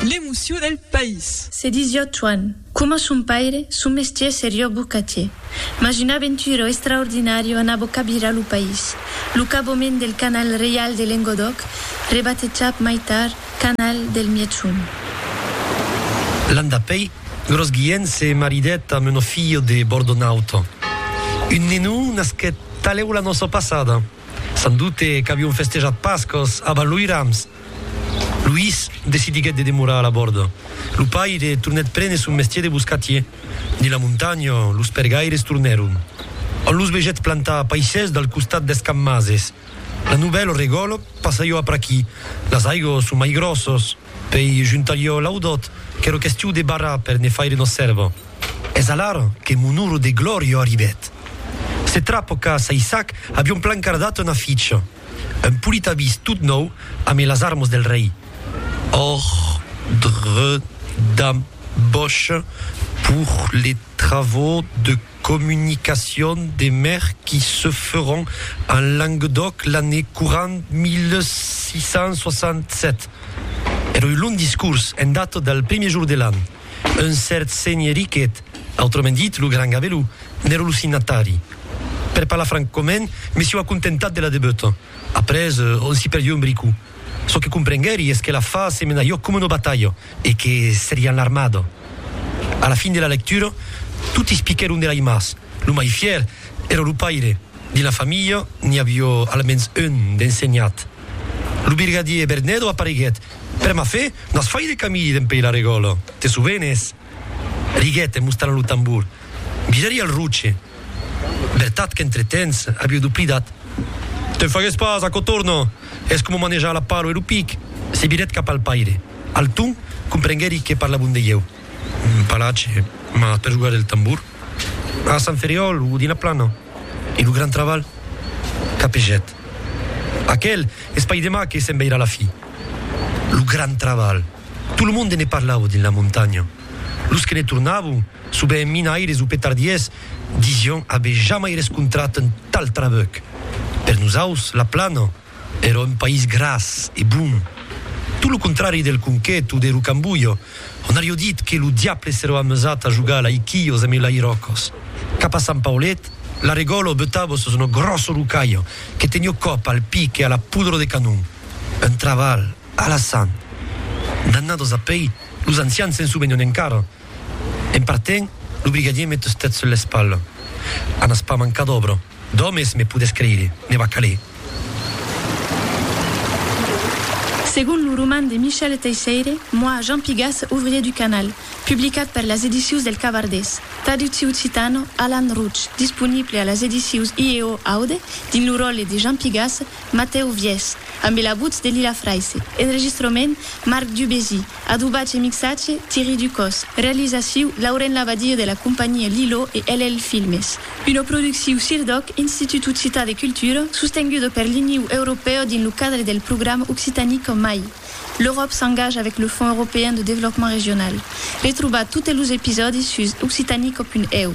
L'emocion del país. Se disió Tuan. Coma son paire, son mestier serió bocatier. Mas un aventuro estraordinario anabó cabirar lo país. Lo caboment del Canal Reial de Lengodòc, rebatejat mai tard Canal del Mièchon. L'an dapèi, Gros Guilhèn se maridèt amb un offiyo de bordonauta. Un nenon nasquèt talèu la nòça passada. Sans dubte qu'avion festejat Pascas a Valoirams. Luís decidiguèt de demorar a la bòrda. Lo paire tornèt prene son mestier de boscatier. Dins la montanha, los pergaires tornèron. On los vegèt plantar paisses dal costat deth camp Mases. La novèl regòl passaió apraquí. Las aigos son mai gròssos. Pei juntalió l'audòt, qu'èra questiu de barrar per ne faire una sèrva. Es alara que mon oro de glòria arribèt. Se trapo qu'a Saissac avion plan cardat una ficha, un polit avís tot nòu amé las armas del rei, Ordre d'embauche pour les travaux de communication des mers qui se feront en Languedoc l'année courant 1667. Èra un long discors en data del primièr jour de l'an. Un cèrt senhè Riquet, autrament dit lo Gran Gabelou, n'èra lo signatari. Per parlar francament, me sieu acontentat de la debeuta. Après, on s'i perdieu un bricou. Çò que comprenguèri es que l'afar se menariá coma una batalha e que seriá en l'armada. A la fin de la lectura, toti es piquèron de l'aimas. Lo mai fièr èra lo paire. Dins la familha, n'i aviá almens un d'ensenhat. Lo birgadier Bernedo apareguèt. Per ma fe, n'as fait de camilh d'en pei la regòla, te sovenes? diguèt en mostrant lo tambor. Viraria el roche. Vertat qu'entre temps avieu doplidat. Te'n fagues pas, aquò torna, es coma manejar la palo e lo pic, se virèt cap al paire. Alton comprenguèri que parlavon de ieu. un palatge, mas per jogar del tambor. A Sant Ferriòl o dins la plana e lo gran trabalh capejèt. Aquel es pas demà que se'n veirà la fi. Lo gran trabalh! Tot lo monde ne parlava dins la montanha. Los que ne tornavan, sovent minaires o petardiers, disián aver jamai rescontrat un tal trabuc. Per nosaus, la plana. Èra un país gras e bon, tot lo contrari del Conquet o de Rocambolho, ont avió dit que lo diable s'èra amusat a jogar a l'aiquilhos e melairòcos. Cap a Sant Paulet, l'arregòlo o beutavo sus un gròsso rocalho que tenió còp al pic e a la pudro de canon. Un trabalh alassant! D'annadas apèi, los ancians se'n sovenon encara. En partent, lo brigadier met sus tèt sul l'espalha. Anas pas mancar d'òbra. D'òmes, me podes creire, ne va caler. Segon lo roman de Michel Teisseire, Moi, Jean Pigas, ouvrier du canal, publicat per las edicius del Cavardés, traductiu occitano, Alan Rouch, disponible a las edicius IEO Aude, dins lo ròtle de Jean Pigas, Matèu Viès, ambe la votz de Lila Fraisse, enregistrament, Marc Dubésy, Adobatge e mixatge, Thierry Ducos. Realizaciu, Lauren Labadie de la companhia Lilo e LL Filmes. Una producciu CIRDOC, Institut Occitan de Cultura, sostenguda per l'Iniu Europèu dins lo cadre del programa Occitanie qu'en mai. L'Euròp s'engage avec le Fonds Européen de Développement Régional. Retrobar totes los episòdis sus occitanie-co.eu.